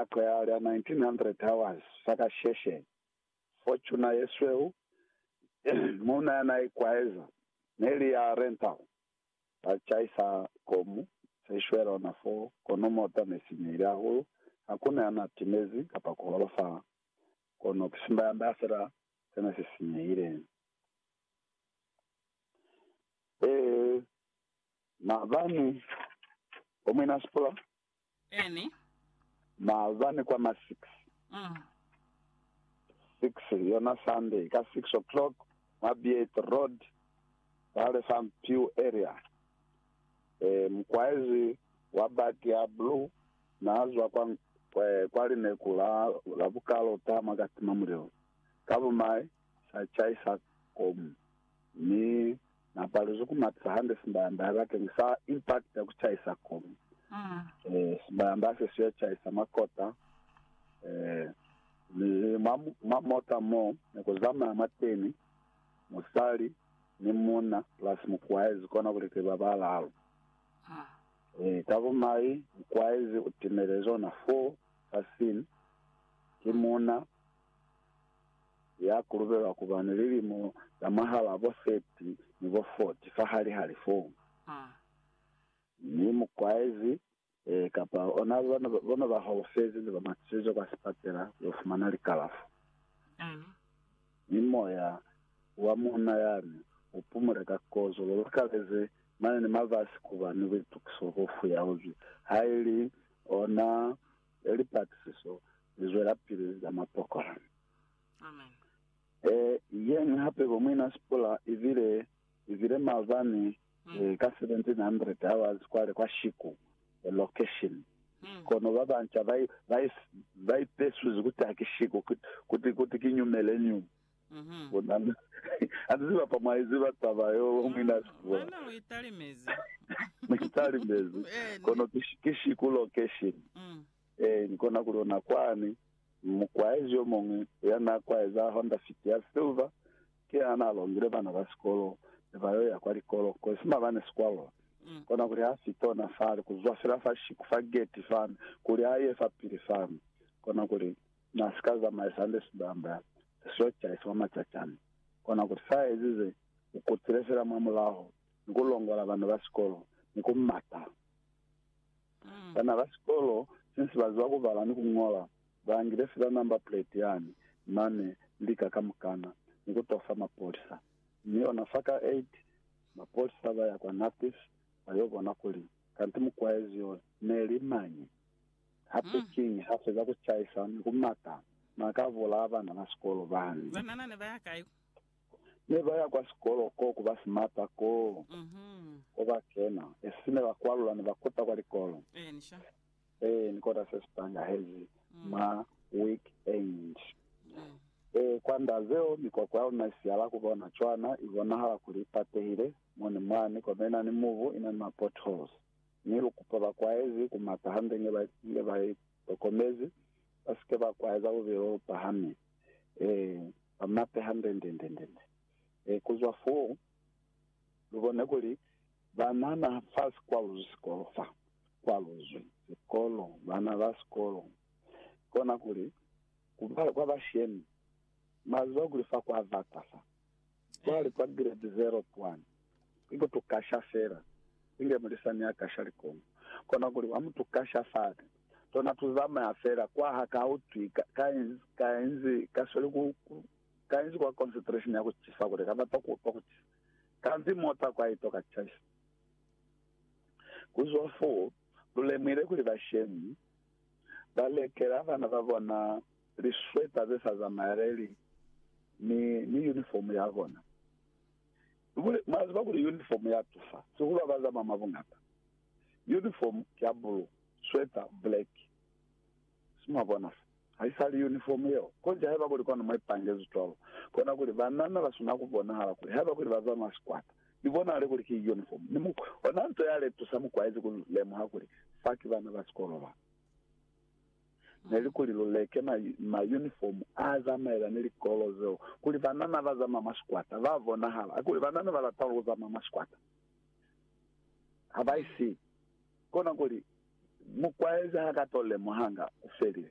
a qeha lya 1900 hours fa kasheshe, Fortuna ye sweu, muuna ya n'a ikwaeza, ne li ya rental, ba chaisa komu se shwela ona fo, kono mota ne sinyehile hahulu, ha ku na ya n'a timezi kapa ku holofala, kono ki simba ya nda fela se ne si sinyehile. Ee, maabani, bo muinasikola Eni. Maabani kwa ma six. Mm. Six, yona Sunday, ka six o'clock, mwa Beat Road, kwale fa Mpiu area. Eh, mukwaezi wa baki ya blue, naazwa kwa, kwa, kwa lineku la, la bukalota mwa katima mulilo. Ka bumai, sa chaisa komu, mi Na paluzi ku matisa hande sibayamba ya bakeni sa impact ya ku chaisa kumi. Eh, sibayamba se siyo chaisa makota. Eh, ni mwa, mwa mota mo ne ku zamaya mwa teni musali ni munna plus mukwaezi kona kuli ki ba balalu. Eh, ka bumai mukwaezi u timelezi ona four sa sin ki munna. ya kulubelwa kuba ni lilimo za mwahal'a bo 30 ni bo 40 fa hali ha lifomu, mi mukwaezi kapa ona bo ne ba holofezi ne ba matisizwe kwa sipatela ku yo fumana likalafo. Mi moya wa muuna yani u pumule ka kozo, lu lukaleze mane ni mabasi kuba ni buitukiso bo fuyauzwi, ha ili ona e lipatisiso li zwelapili za mapokola. Amen. E yeñwi hape bo Muina Sipula i bile i bile maabani Mm. eh, ka 1700 hours kwale kwa Shiku eh, location Mm. kono ba banca ba i- ba i- ba ipesuzi kuti hakishiku kuti kuti kinyumele nyu Mhm. Bona na, a ni ziba pa mwa i ziba taba yo lwa mwi na si bula. Mwina lu italimezi. Ni italimezi. Eh, Kono ni. ki, shi- ki shiku location. Mm. Eh, ni kona ku lona kwani. Mukwaezi yo muñwi ya na kwaeza Honda Fit ya silver, ki yena na longile bana ba sikolo ne ba yo ya kwa likolo, ko si mabane si kwalula. Mm. Kona kuli ha fita ona fale, ku zwa fela fa shiku fa geti fani, kuli a ye fa pili fani. Kona kuli, Na si ka zamaisa hande sibamba se siwa caise mwa macacani. Kona ku sa ezize, u kutile fela mwa mulaho ni ku longola bana ba sikolo ni ku mata. Bana ba sikolo, since ba ziba ku bala ni ku ñola, ba ngile fela number plate yani mane ni lika kamukana ni ku to fa mapolisa. Mi ona fa ka 8, mapolisa ba ya kwa Nappies ba yo bona kuli kanti mukwaezi yo ne li mañi. Hape kiñi ha feza ku chaisa ni ku mata n'a ka bulaa bana ba sikolo bani? Banana ne ba ya kai? Ne ba ya kwa sikolo ko ku ba simata ko, ko ba kena. E sisi ne ba kwalula ne ba kota kwa likolo. Ee, ni kota se si tangahezi mwa week-end. Ee, kwa nda zeo, mikoko ya luna i siyala ku bona cwana, i bonahala kuli i patehile mo ni mwani, kono i na ni mubu, i na ni ma-potholes. Mi lu kupa bakwaezi ku mata hande nge ba nge ba i tokomezi, ba si ke ba kwaeza lubilo lu pahami, ee, ba mate hande nde, nde, nde, nde. Ee, ku zwa foo, lu bone kuli bana na fa si kwaluzwi sikolo fa. Kwaluzwi sikolo, bana ba sikolo. Kona kuli, ku ba, kwa bashemi, mwa ziba kuli fa kwa bata fa. Cwale kwa grade zero kwani, inge tu kasha fela, inge mulisani ya kasha likongo, kona kuli wa mutu kasha fani, tona tu zamaya fela kwa ha ka utwi ka, ka inzi, ka inzi ka sweli ku, ku, ka inzi kwa concentration ya ku cisa kule, ka bata ku utwa ku cisa. Kanti mota kwa ito ka caisa. Ku zwa foo, lu lemuhile kuli bashemi. ba lekela bana ba bona liswepa ze sa zamaeleli ni, ni uniform ya bona. Kuli, mwa ziba kuli uniform ya tusa, sihulu ha ba zamaya mwa buñata. Uniform ki ya blue, swepa black. Si mwa bona se? Ha i sa li uniform yeo. Konji haiba kuli kwanu mwa ipangezi cwalo, kona kuli banana ba sina ku bonahala kuli haiba kuli ba zamaya sikwata, Ni bonahale kuli ki uniform. Ni muku ona nto yale tusa mukwaezi ku lemuha kuli fa ki bana ba sikolo ba. Neli kuli lu leke ma, ma uniform a zamaela ni likolo zeo, kuli banana ba zamaya mwa sikwata ba bonahala. A kuli banana ba lata ku zamaya mwa sikwata. Ha ba isi. Kona kuli mukwaezi ha ka to lemuhanga ku felile.